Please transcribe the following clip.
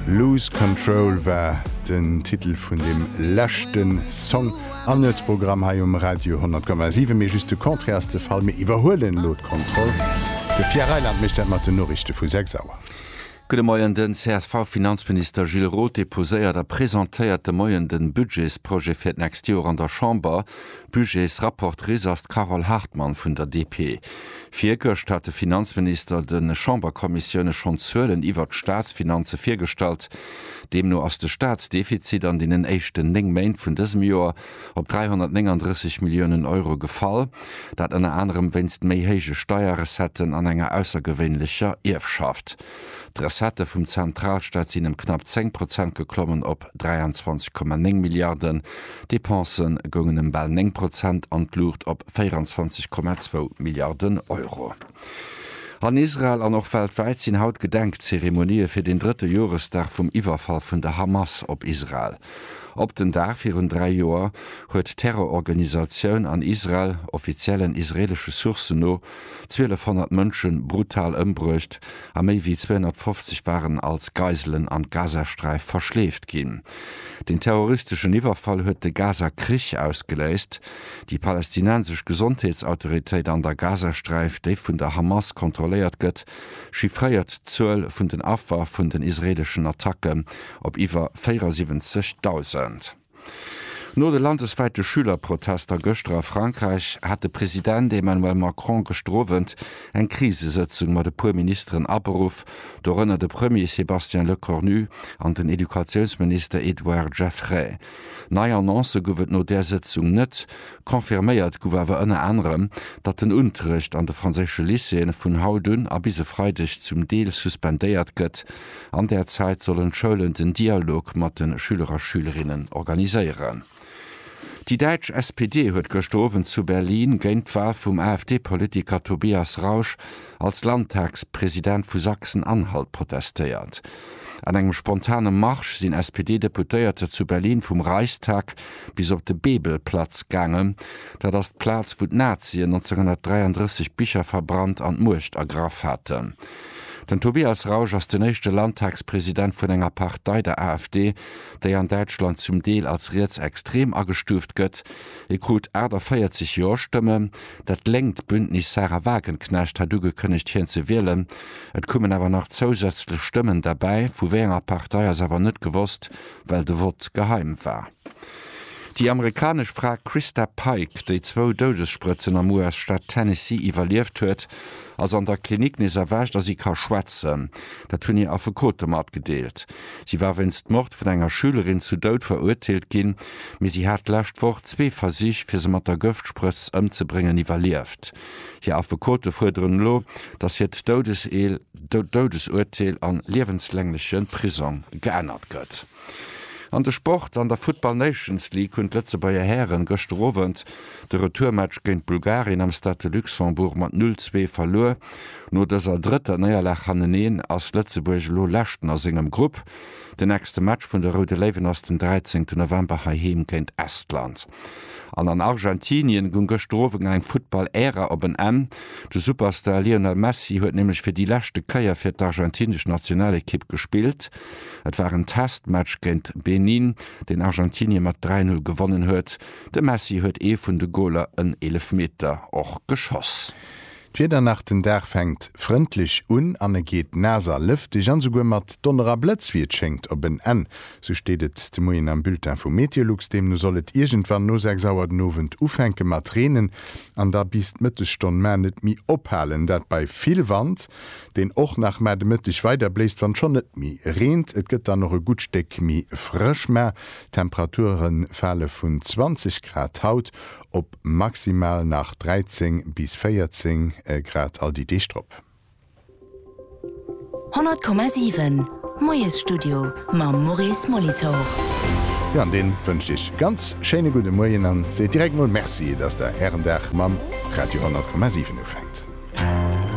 Lose Control war den Titel vun deem leschte Song am Nuetsprogramm hei um Radio 10,7. Mee just de Contraire ass de Fall, mir iwwerhuelen elo d'Kontroll. De Pierre Reyland mécht dat mat den Noriichte vu 6 Auer. Gudde Moien. Den CSV-Finanzminister Gilles Roth deposéiert a presentéiert de Moien de Budgetsprojet fir d'nächst Joer an der Chamber. Budgetsrapportrice ass d'Carole Hartmann vun der DP. Virgëscht hat de Finanzminister de Chamberkommissioune schonn d'Zuelen iwwert d'Staatsfinanze virgestallt. Deemno ass de Staatsdefizit an deenen éischten néng Méint vun dësem Joer op 339 Milliounen Euro gefall. Dat ënner anerem wéinst méi héije Steierrecetten an enger aussergewéinlecher Ierfschaft. D'Recettë vum Zentralstaat sinn ëm knapp 10 Prozent geklommen op 23,9 Milliarden, d'Depensë goungen ëm bal 9 Prozent an d'Luucht op 24,2 Milliarden Euro. An Israel an och weltwäit sinn haut Gedenkzeremonië fir den drëtte Joresdag vum Iwwerfall vun der Hamas op Israel. Op den Dag virun dräi Joer huet d'Terrororganisatioun an Israel, offiziellen israeelesche Sourcen no, 1.200 Mënsche brutal ëmbruecht a méi wéi 250 waren als Geiselen an d'Gazasträif verschleeft ginn. Den terroristeschen Iwwerfall huet de Gaza-Krich ausgeléist. Déi palästinensesch Gesondheetsautoritéit an der Gazasträif, déi vun der Hamas kontrolléiert gëtt, chiffréiert d'Zuel vun den Affer vun den israeeleschen Attacke op iwwer 74.000. No de landeswäite Schülerprotester gëschter a Frankräich hat de President Emmanuel Macron gëschter Owend eng Krisesëtzung mat e puer Ministeren aberuff, dorënner de Premier Sébastien Lecornu an den Educatiounsminister Edouard Geffray. Nei Annoncë gouf et no där Sëtzung net. Confirméiert gouf awer ënner anerem, datt den Unterrecht an de franséische Lycéeë vun haut un a bis e Freideg zum Deel suspendéiert gëtt. An där Zäit sollen d'Schoulen den Dialog mat de Schüler a Schülerinnen organiséieren. Déi däitsch SPD huet gëschter Owend zu Berlin géint d'Wahl vum AfD-Politiker Tobias Rausch als Landtagspresident vu Sachsen-Anhalt protestéiert. An engem spontane Marsch sinn SPD-Deputéierter zu Berlin vum Reichstag bis op de Bebelplatz gaangen. Dat ass d'Plaz, wou d'Nazien 1933 Bicher verbrannt an d'Muecht ergraff haten. Den Tobias Rausch ass den éischte Landtagspresident vun enger Partei, der AfD, déi an Däitschland zum Deel als rietsextrem agestuuft gëtt. E krut 48 Jo-Stëmmen. Dat lénkt Bündnis Sahra Wagenknecht hat ugekënnegt, hien ze wielen. Et kommen awer nach zousätzlech Stëmmen derbäi. Vu wéi enger Partei ass awer net gewosst, well de Vott geheim war. Déi amerikanesch Fra Christa Pike, déi zwou Doudessprëtzen am US-Staat Tennessee iwwerlieft huet, ass an der Klinik nees erwächt a si ka schwätzen. Dat hunn hir Affekote matgedeelt. Si war wéinst Mord vun enger Schülerin zu Doud verurteelt ginn, mee si hat d'lescht Woch zwee Versich, fir se mat der Gëftsprëtz ëmzebréngen, iwwerlieft. Hir Affekote fuerderen elo, datt hiert Doudesurteel a liewenslängleche Prisong geännert gëtt. An de Sport, An der Football Nations League hunn d'Lëtzebuerger Hären gëschter Owend de Retourmatch géint Bulgarien am Stade de Luxembourg mat 0, 2 verluer. No dëser drëtter Néierlag hanneneen ass Lëtzebuerg elo Leschten a sengem Grupp. Den nächste Match vun de Roude Léiwen ass den 13 November heiheem géint Estland. An an Argentinien goung gëschter Owend eng Football-Ära op en Enn. De Superstar Lionel Messi huet nämlech fir déi leschte Kéier fir d'argentinesch Nationalekipp gespillt. Et war en Testmatch géint Benin, deen Argentinie mat 3-0 gewonnen huet. De Messi huet ee vun de Goler, en Eelefmeter, och geschoss. D'Wieder nach, Den Dag fänkt frëndlech un an e geet naass a lëfteg an esouguer mat Donner a Blëtz, wéi et schéngt, op en Enn. Sou steet et de Moien am Bulletin vu Meteolux. Deemno soll et iergendwann no 6 Auer den Owend ufänke mat reenen an da bis d'Mëttesstonn mar net méi ophalen. Dat bei vill Wand. deen och nach mar de Mëtteg weider bléist, wann schonn net méi reent. Et gëtt dann och e gutt Stéck méi frësch, ma d'Temperature fale vun 20 Grad haut op maximal nach 13 bis 14 Grad all déi Deeg drop. 100,7 Moiesstudio mam Maurice Molitor. Jo, an dee wënscht Iech ganz schéine gudde Moien a seet direkt mol Merci, dass Der Ären Dag mam Radio 100,7 ufänkt.